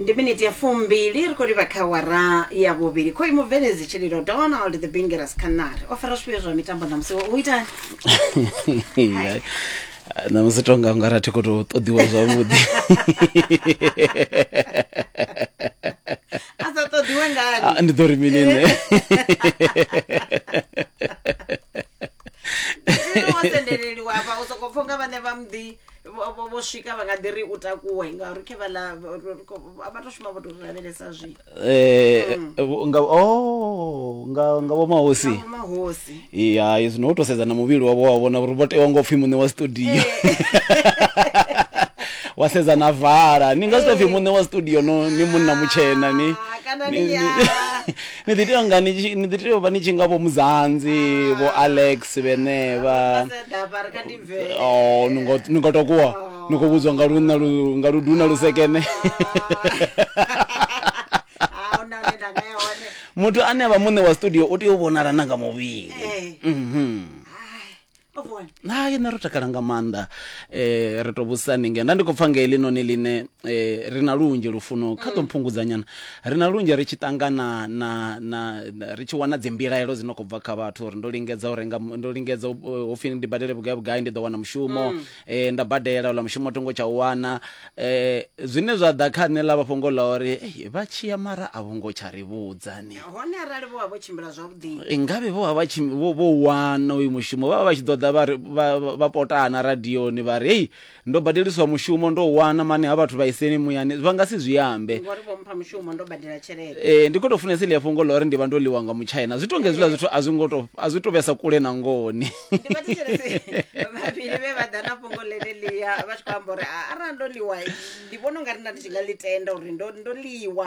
ndi miniti ya fumbili ri khou livha kha wara ya vhuvhili khoi mubveledzi tshililo donald the bingeras canary o fara zwifhio zwa mitambo ṋamusi u itani ṋamusi tonga ungari a thi khou tou ṱoḓiwa zwavhuḓi a sa ṱoḓiwe ngani Ah, ndi ḓo ri mini nṋe wa sendeleliwa hafha u sokou pfha unga vhane vha mḓi vho vho- vho swika vha nga ḓi ri u takuwe ngauri khe vha ḽa vho- ro- ko- a vha to shuma vho to ri lavhelesa zwi Eh, vho- nga oh nga nga vho mahosi Nga vho mahosi ya izwi no to sedza na muvhili wavho wa vhona uri vho tewa ngo pfhi muṋe wa studio wa sedza na vala ni nga si to pfhi muṋe wa studio no ni munna mutshena ni Ah, kana ni- ni- ni- ah. ni ḓi tea nga ni tshi- ni ḓi tea u vha ni tshi nga vho muzanzi vho alex vhenevha Vha sa ḓa vha ri kha ndi oh ni ngo ni ngo tokuwa ni khou vhudzwa nga lunna lu nga luduna lu sekene ahuna hune nda nga ya hone muthu ane avha muṋe wa studio u tea u vhonala na nga muvhili Eh, mhm o vhona na yena ro takala nga maanḓa eh ri to vhusani nge nda ndi khou pfa nga heḽinoni ḽine eh ri na lunzhi lufuno kha ḓo mphungudza nyana Ri na lunzhi ri tshi ṱangana na, na, na, ri tshi wana dzimbilaelo dzi no khou bva kha vhathu uri ndo lingedza u renga, ndo lingedza u, eh, ho pfi ndi badele vhugai vhugai ndi ḓo wana mushumo, eh, nda badela ola mushumo thi ngo tsha u wana. Eh, zwine zwa ḓa kha nṋe ḽa vha fhungo ḽa uri eh, vha tshiya mara a vho ngo tsha ri vhudza ni. hone arali vho vha vho tshimbila zwavhuḓi Eh, ngavhe vho vha vha tshi vho vho wana uyu mushumo vha vha vha tshi ḓo ḓa vha ri- vha- vha- vha potana radioni vha ri hei ndo badeliswa mushumo ndo wana mane ha vhathu vhaiseni muyani vha nga si zwi ambe ngori vho mpha mushumo ndo badela tshelede Eh, ndi khou tou funesa iḽia fhungo ḽa uri ndi vha ndo ḽiwa nga muchina zwi tonga hezwiḽa zwithu a zwi ngo to- a zwi to vhesa kule na ngoni ndi vhathetshelesi vhavhili vhe vha ḓa na fhungo ḽeneḽia vha tshi khou amba uri "Ah, arali ndo ḽiwa ndi vhona ungari nda ndi tshi nga ḽi tenda uri ndo ndo ḽiwa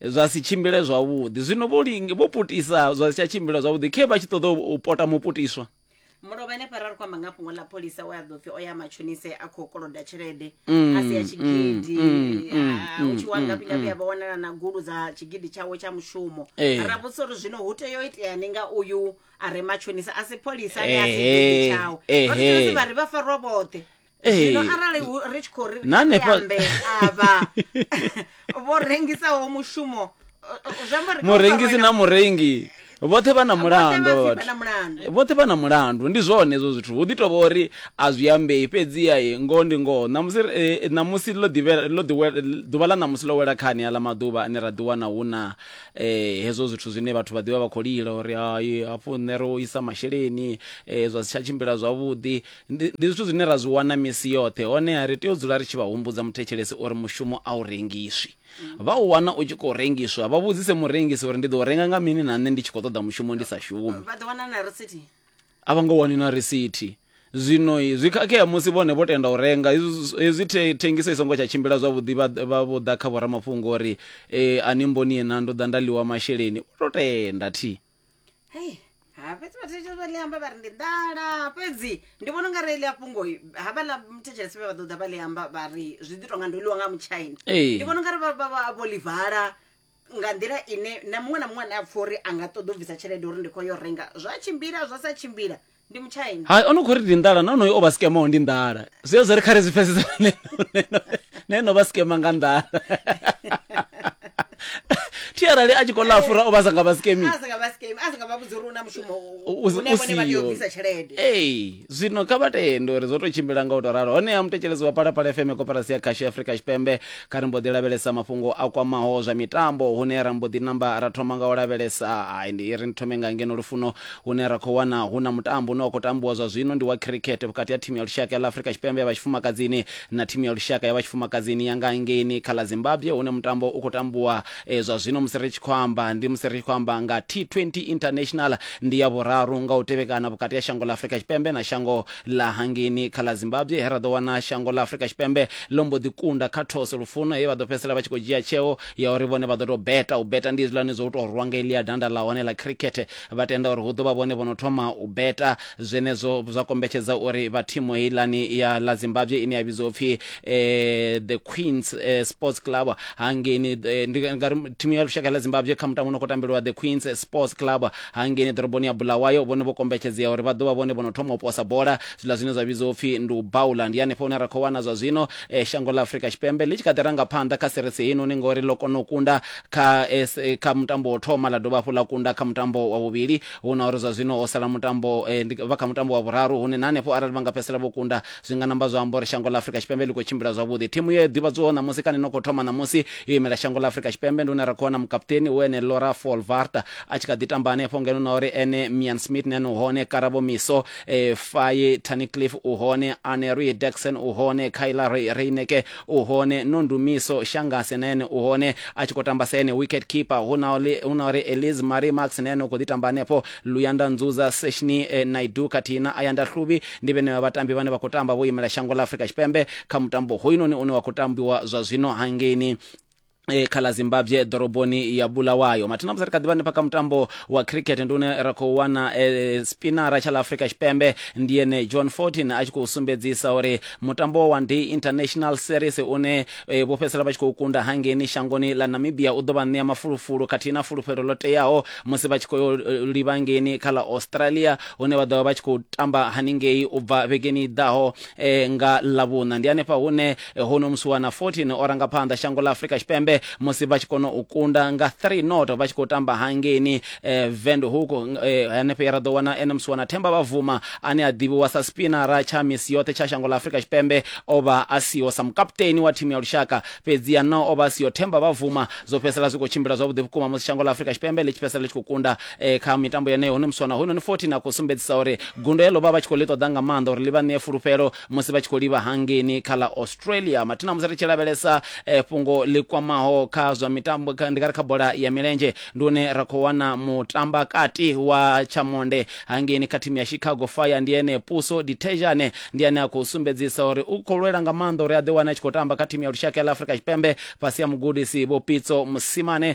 zwa si tshimbile zwavhuḓi zwino vho linge vho putisa zwa si tsha tshimbila zwavhuḓi khe vha tshi ṱoḓa u- u pota muputiswa mulovha ene fara ri khou amba nga fhungo ḽa pholisa we a ḓo pfi o ya matshonise a khou koloda tshelede a si ya tshigidi Ah, u tshi wa ngafhi ngafhi a vha wanala na gulu dza tshigidi tshawe tsha mushumo Eh. ra vhudzisa uri zwino hu tea u iteani nga uyu a re matshonisa a si pholisa ane a si Ehe, tshigidi tshawe ehe. rosi vha ri vha farwa vhoṱhe Ee. zwino arali hu- ri tshi khou ri Na hanefha- ambe avha vho rengisaho mushumo uh, uh, zwi amba uri kha hu murengisi fariwe na murengi vhoṱhe vha na mulandu vha vha pfhi vha na vhathu mulandu. vhoṱhe vha na mulandu ndi zwone hezwo zwithu hu ḓi tovha uri a zwi ambei fhedziha e, ngoho ndi ngoho ṋamusi e, ṋamusi ḽo ḓivhe- ḽo ḓiwe- ḓuvha ḽa ṋamusi ḽo wela khani aḽa maḓuvha ane ra ḓiwana hu na eh, hezwo zwithu zwine vhathu vha ḓivha vha khou lila uri hai hafhu nṋe ro isa masheleni eh, zwa si tsha tshimbila zwavhuḓi Ndi, ndi zwithu zwine ra zwi wana misi yoṱhe, honeha ri tea u dzula ri tshi vha humbudza muthetshelesi uri mushumo a u rengiswi. Vha u wana u tshi khou rengiswa, vha vhudzise murengisi uri ndi ḓo u renga nga mini na nṋe ndi tshi khou ṱoḓa mushumo ndi sa shumi. vha ḓo wana na risithi A vha nga wani na risithi. Zwino zwi khakhea musi vhone vho tenda u renga. Hezwi hezwi the, thengiso i songo tsha tshimbila zwavhuḓi, vha, vha vho ḓa kha vhoramafhungo uri, e, a ni mboni na, ndo ḓa nda ḽiwa masheleni. Vho tou tenda thi. hei ha fhedzi vhathetshelesi vha ḽi amba vha ri ndi nḓala fhedzi ndi vhona unga reili a fhungo havhaḽa muthetshesi vhe vha ḓo ḓa vha ḽi amba vha ri zwi ḓi tonga ndo ḽiwa nga mutshaina Ee. ndi vhona unga ri vha- vha- vha- vho ḽi vala nga nḓila ine na muṅwe na muṅwe ane a pfha uri a nga ṱoḓa u bvisa tshelede uri ndi khou yo renga zwa tshimbila zwa sa tshimbila ndi muchina hayi o no khou ri ndi nḓala na onoyo o vha skemaho ndi nḓala zwi ya zwa ri kha ri zwi pfesesa na ene o vha skema nga nḓala thi arali a tshi khou ḽa fura o vha sa nga vha skemi a sa nga vha skemi a sa nga vha vhudzi uri u na mushumo u- une vhone vha tea u usiho. bvisa tshelede ee zwino kha vha tende uri zwo tou tshimbila nga u tou ralo honeha muthetshelezi wa palapala fm koperasi ya khasho ya afrika tshipembe kha ri mbo ḓi lavhelesa mafhungo a kwamaho zwa mitambo hune ra mbo ḓi namba ra thoma nga u lavhelesa hai ndi ri ni thome nga ngeno lufuno Hune ra khou wana hu na mutambo une wa khou tambiwa zwa zwino ndi wa khirikhethe vhukati ha thimu ya lushaka ya ḽa Afrika Tshipembe ya vha tshifumakadzini na thimu ya lushaka ya vha tshifumakadzini ya nga hangeini kha ḽa Zimbabwe hune mutambo u khou tambiwa e, zwa zwino musi ri tshi khou amba ndi musi ri tshi khou amba nga T20 International ndi ya vhuraru nga u tevhekana vhukati ha shango ḽa Afrika Tshipembe na shango ḽa hangeini kha ḽa Zimbabwe he ra ḓo wana shango ḽa Afrika Tshipembe ḽo mbo ḓi kunda kha those lufuno he vha ḓo fhedzisela vha tshi khou dzhia tsheo ya uri vhone vha ḓo tou beta u beta ndi hezwiḽani zwo u tou rwa nga elia danda ḽa hone ḽa khirikhethe vha tenda uri hu ḓo vha vhone vho no thoma u beta zwenezwo zwa kombetshedza uri vha thimu heilani ya la zimbabwe ine ya vhidziwa upfhi eh, the queens eh, sports club hangeni eh, ndi nga ri thimu ya lushaka la zimbabwe kha mutambo no khou tambeliwa the queens sports club hangeni ḓoroboni ya bulawayo vhone vho kombetshedzea uri vha ḓo vha vhone vho no thoma u posa bola zwiḽa zwine zwa vhidziwa upfhi ndi u baula ndi hanefho hune ra khou wana zwa zwino eh, shango la afrika tshipembe ḽi tshi kha ḓi ranga phanḓa kha serisi heinoni ngori ḽo kona u kunda kha S- eh, kha mutambo wo thoma ḽa dovha hafhu ḽa kunda kha mutambo wa vhuvhili hu na uri zwa zwino ho sala mutambo eh, ndi- vha kha mutambo wa vhuraru hune na hanefho arali vha nga fhedzisela vho kunda zwi nga namba zwa amba uri shango ḽa afurika tshipembe ḽi khou tshimbila zwavhuḓi thimu ye ḓivhadzwaho ṋamusi kana ino khou thoma ṋamusi yo imela shango ḽa afurika tshipembe ndi hune ra khou wana mukaputeni hu ene lora folvarta a tshi kha ḓi tamba hanefho ngeno na uri ene mian smith nene u hone karabo miso eh, faye tanicliff u hone anery dexon u hone kyla Re- reineke u hone no ndumiso shangase na ene u hone a tshi khou tamba sa ene wicket keeper hu na uri hu na uri eliz marie max na ene u khou ḓi tamba hanefho luyanda nzuza seshni eh, naidu khathihi na ayanda hluvhi ndi vhene vha vhatambi vhane vha khou tamba vho imela shango ḽa afrika tshipembe kha mutambo hoyunoni une wa khou tambiwa zwa zwino hangeini eh, kha ḽa zimbabwe ḓoroboni ya bulawayo mathina musi ri kha ḓivha hanefha kha mutambo wa cricket ndi une ra khou wana eh, spinara tsha ḽa afrika tshipembe ndi ene john 14 a tshi khou sumbedzisa uri mutambo wa one day international series une eh, vho fhedzisela vha tshi khou kunda hangeni shangoni ḽa namibia u ḓo vha ṋea mafulufulu khathihi na fulufhelo ḽo teaho musi vha tshi khou yo, eh, livha ngeni kha ḽa australia hune vha ḓo vha vha tshi khou tamba haningei u bva vhegeni i ḓaho eh, nga ḽavhuṋa ndi hanefha hune Huno musi wa na 14 o ranga phanḓa shango ḽa Afrika Tshipembe musi vha tshi kona u kunda nga 3 not vha tshi khou tamba hangeini eh, Windhoek eh, hanefho ya ra ḓo wana ene musi wa na Themba Bavuma ane a ḓivhiwa sa spinara tsha misi yoṱhe tsha shango ḽa Afrika Tshipembe o vha a siho sa mukaputeni wa thimu ya lushaka fhedzi ya na o vha a siho Themba Bavuma zwo fhedzisela zwi khou tshimbila zwavhuḓi vhukuma musi shango ḽa Afrika Tshipembe ḽi tshi fhedzisela ḽi tshi khou kunda eh, kha mitambo yeneyo huno musi wa na hoyunoni 14 a khou sumbedzisa uri gundo heḽo vha vha tshi khou ḽi ṱoḓa nga maanḓa uri ḽi vha ṋee fulufhelo musi vha tshi khou livha hangeni kha ḽa australia mathina musi ri tshi lavhelesa eh, fhungo ḽi kwamaho kha zwa mitambo kha- ndi nga ri kha bola ya milenzhe ndi hune ra khou wana mutamba kati wa tshamonde hangeni kha thimu ya chicago fire ndi ene puso ditejane ndi ane a khou sumbedzisa uri u khou lwela nga maanḓa uri a ḓiwane a tshi khou tamba kha thimu ya lushaka ya ḽa afrika tshipembe fhasi ya mugudisi vho pitso musimane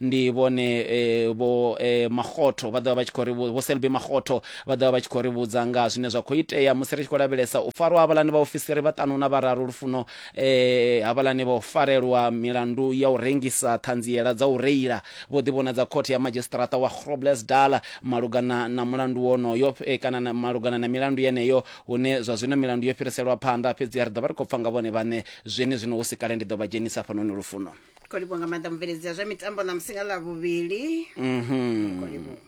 ndi vhone eh, vho eh, makgotho vha ḓovha vha tshi khou ri vhu- vho selby makgotho vha ḓovha vha tshi khou ri vhudza nga zwine zwa khou itea musi ri tshi khou lavhelesa u farwa havhalani vhaofisiri vhaṱanu na vhararu lufuno eh, havhalani vho farelwa milandu ya u rengisa ṱhanziela dza u reila vho ḓivhonadza khothe ya madzhisiṱaraṱa wa groblersdal malugana na mulandu wonoyo eh, kana na- malugana na milandu yeneyo hune zwa zwino milandu yo fhiriselwa phanḓa fhedzi ri ḓo vha ri khou pfa nga vhone vhaṋe zwenezwino hu si kale ndi ḓo vha dzhenisa fhanoni lufuno kho livhuwa nga maanḓa mubveledzi ya zwa mitambo ṋamusi nga ḽa vhuvhili Mhm. kho livhuwa